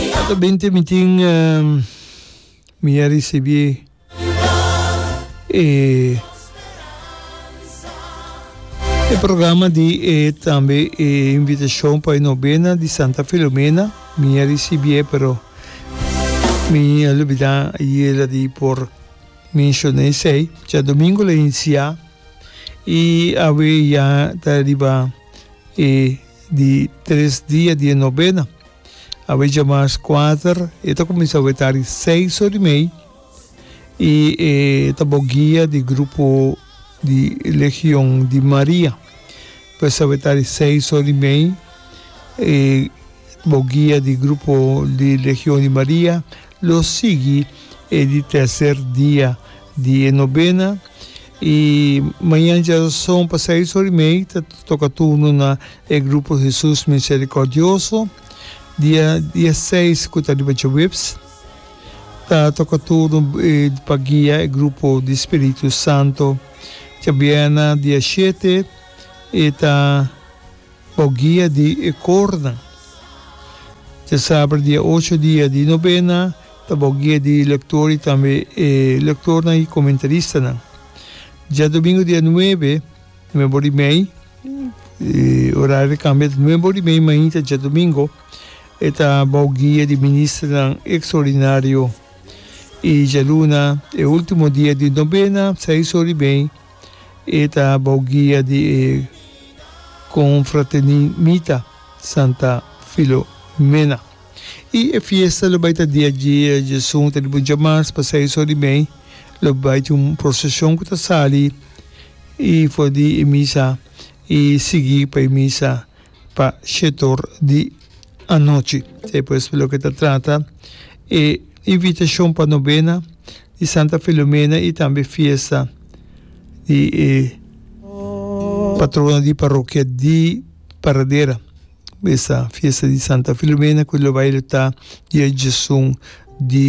Ato binti mi tin mi a risibi e e programa di e tambe e invitashon pa e nobena di Santa Filomena mi a risibié pero mi a lubidá ayera di por menshon'é esei cha domingo la inisiá i awe ya ta riba e di tres dia di e nobena. A wecha mas kuater, e ta kuminsá wetá di seis or di mei, i e ta bou guia di grupo di Legion di Maria. Pues a wetá di seis or di mei, e bou guia di grupo di Legion di Maria Lo sigui e di tercer dia di e nobena y mañan djaroson pa seis or y mei ta toca turno na e grupo Hesus Misericordioso. Dia diaseis cu ta riba djoeps ta toca turno pa guia e grupo di Spiritu Santo. Djabiena dia shete e ta. Bo guia di e kornan. Te saber di e ocho dia di nobena ta bo guia di lektor i tambe e lektornan i komentaristanan. Dja domingo dia nuebe, nuebe ora i mei, orario ta kambia ta nuebe ora i mei mainta dja domingo, e ta bo guia di ministernan ekstraordinario i djaluna, e ultimo dia di nobena, seis ora i mei. E ta bou guia di e confraternimita Santa Filomena. Y e fiesta lo bay ta dia dje dje sunta di buncha mas pa seis or di mei lo bay tin un procesion cu ta sali y for di e misa y sigui pa e misa. pa shetor di anochi. Esei pues loke ta trata e invitashon pa nobena di Santa Filomena i tambe fiesta di e patrona di parokia di Paradera, mesa fiesta di Santa Filomena ku lo bai lo ta dia djesun di.